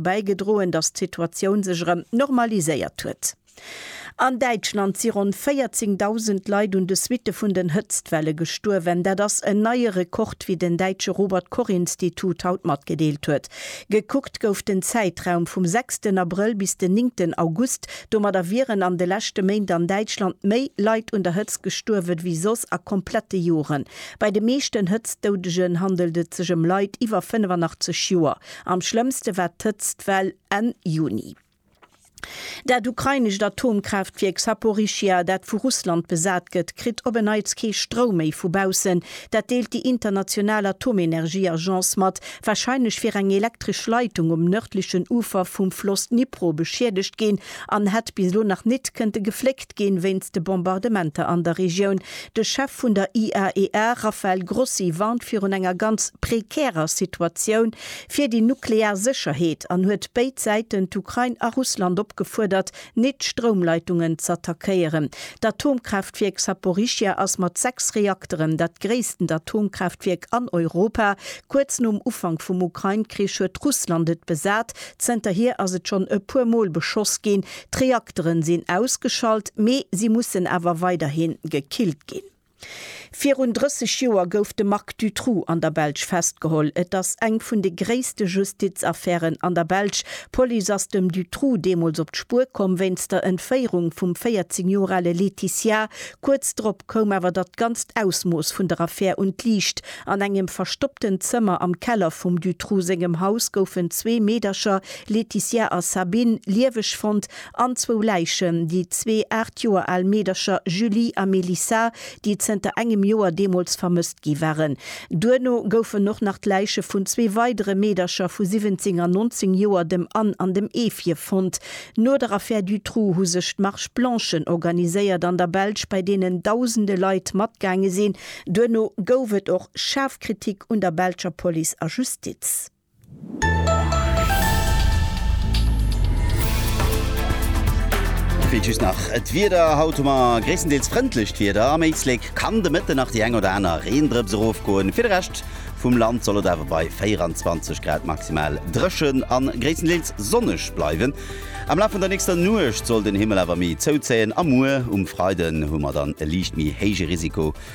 bäigedroen, datt d'Situatioun sech erëm normaliséiert huet. An Däitschland si ronn 14.000 Leit un de Suitte vun den Hëtztwelle gestuerwen. Dat ass en neie Rekord, wéi den däitsche Robert Koch Institut haut matgedeelt huet. Gekuckt gouf den Zäitraum vum sechsten Abrëll bis den néngten August. Domadder wieren an de leschte Méint an Däitschland méi Leit un der Hëtzt gestuerwen, wéi soss a komplette Joren. Bei de meeschten Hëtztdoudegen handelt et sech ëm Leit iwwer 85 Joer. Am schlëmmste war d'Hëtztwell Enn Juni. Dat ukrainescht Atomkraaftwierk Saporischschja, dat vu Russland besat gëtt, kritt op en Neits kee Stroum méi vu baussen. Dat deelt déi international Atomenergieagence mat. Warscheinlech wier eng elektresch Leitung um nërdlechen Ufer vum Floss Dnipro beschiedegt ginn an hätt bis elo nach nit kënnte gefléckt ginn, wéinst de Bombardementer an der Regioun. De Chef vun der IAEA, Rafael Grossi, warnt virun enger ganz prekärer Situatioun fir déi nuklear Sécherheet an huet béid Säiten, d'Ukrain a Russland, opgefuerdert, nit d'Stroumleitungen z'attackéieren. D'Atomkraaftwierk Saporischschja ass mat sechs Reakteren dat gréissten Atomkraaftwierk an Europa. Kuerz nom Ufank vum Ukrain-Krich huet Russland et besat. Zënterhier ass et schonn e puer Mol beschoss ginn, D'Reakteren sinn ausgeschalt, mee si mussen awer weiderhi gekillt ginn. Virun 30 Joer gouf de Marc Dutroux an der Belsch festgeholl. Et ass eng vun de gréisste Justizaffären an der Belsch. D'Police ass dem Dutroux deemools op d'Spuer komm wéinst der Entféierung vum 14 Joer ale Laetitia. Kuerz drop koum awer datt ganzt Ausmooss vun der Affär un d'Liicht. An engem verstoppten Zëmmer am Keller vum Dutroux sengem Haus goufen zwee Meedercher Laetitia a Sabine, lieweg fonnt, an zwou Läichen, déi zwee aacht Joer al Meedercher Julie a Mélissa, déi zënter engem Joer deemools vermësst gi waren. Duerno goufen och nach d'Läiche vun zwee weidere Meedercher vu 17 an 19 Joer, dem Anne an dem Evie, fonnt. No der Affär Dutroux hu sech d'Marches Blanchen organiséiert an der Belsch, bei deenen dausende Leit matgaange sinn. Duerno gouf et och schaarf Kritik un der belscher Police a Justiz. Vläit just nach d'Wieder, Haut hu mer gréisstendeels frëndlecht Wieder, am Éislek kann de Mëtten nach déi eng oder aner Reendrëps erofgoen. Fir de Rescht vum Land soll et awer bei 24 Grad maximal dréchen a gréisstendeels sonneg bleiwen. Am Laf vun der nächster Nuecht soll den Himmel awer méi zouzéien a muer um Freiden hu mer dann e liicht méi héije Risiko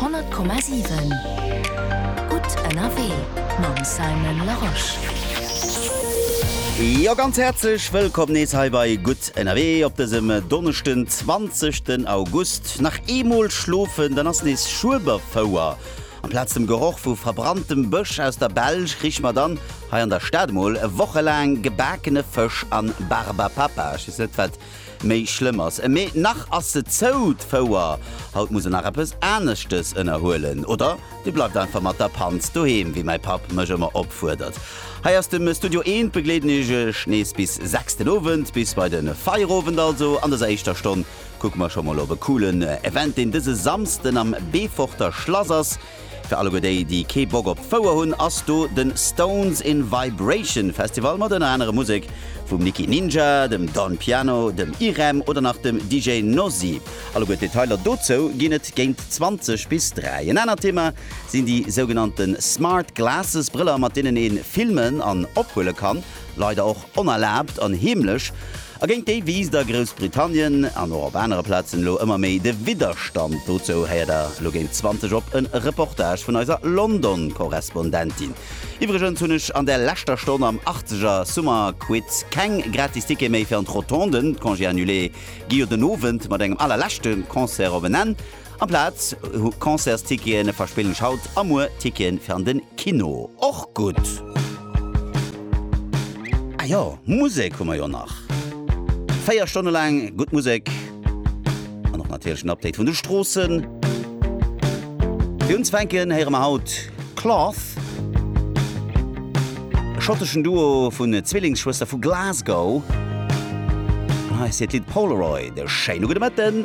100,7 Gutt ënnerwee mam Simon Larosche. Jo ganz häerzlech wëllkomm nees hei bei Gutt ënnerwee op dësem Donneschden 20 den August. Nach eemol schlofen, dann ass nees Schueberfouer. Amplaz dem Geroch vu verbranntem Bësch aus der Belsch krich mer dann hei an der Stad emol e Woche laang gebakene Fësch an Barbapapa. Ech weess net wat Méi schlëmm ass e Mee nach ass se zou, d'Fouer. Haut muss en nach eppes aneschtes ënnerhuelen. Oder Dir bleift einfach mat der Panz doheem, wéi mäi Papp mech ëmmer opfuerdert. Hei ass dem Studio Eent begleeden ech Iech nees bis 6 den Owend, bis bei den Feierowend also. An dëser éischter Stonn kucke mer scho mol op e coolen Event, deen dëse Samsden am Beeforter Schlass ass. Fir alleguer déi, déi kee Bock op d'Fouer hunn, ass do de Stones in Vibration Festival mat ënner anerem Musek vum Nicky Ninja, dem Don Piano, dem Irem oder nach dem DJ Nosi. Alleguer d'Detailer dozou ginn et géint 20 bis 3. En anert Thema sinn déi sougenannte Smart Glasses, Brëller mat deenen ee filmen an ophuele kann. leider och onerlaabt an heemlech, a géint déi wiisst a Groussbritannien, an och op anere Plazen elo ëmmer méi de Widderstand. Dozou héiert der elo géint 20 op e Reportage vun eiser London-Korrespondentin. Iwwregens hunn ech an der leschter Stonn am Arzeger Summer Quiz keng gratis Tickete méi fir an d'Rotonden. D'Congé Annulé gi jo den Owend mat engem allerleschte Concert op en Enn. Amplaz vu Concertstickete verspillen ech haut a muer Ticketen fir an den Kino. Och gutt! Ah jo, Musek hu mer jo nach. Véier Stonne laang gutt Musek an och natierlech en Update vun de Stroossen. Fir unzefänken héiere mer haut Cloth, e schotteschen Duo vun Zwillingsschwëster vu Glasgow. An hei ass hiert Lidd Polaroid. E schéine gudde Mëtten!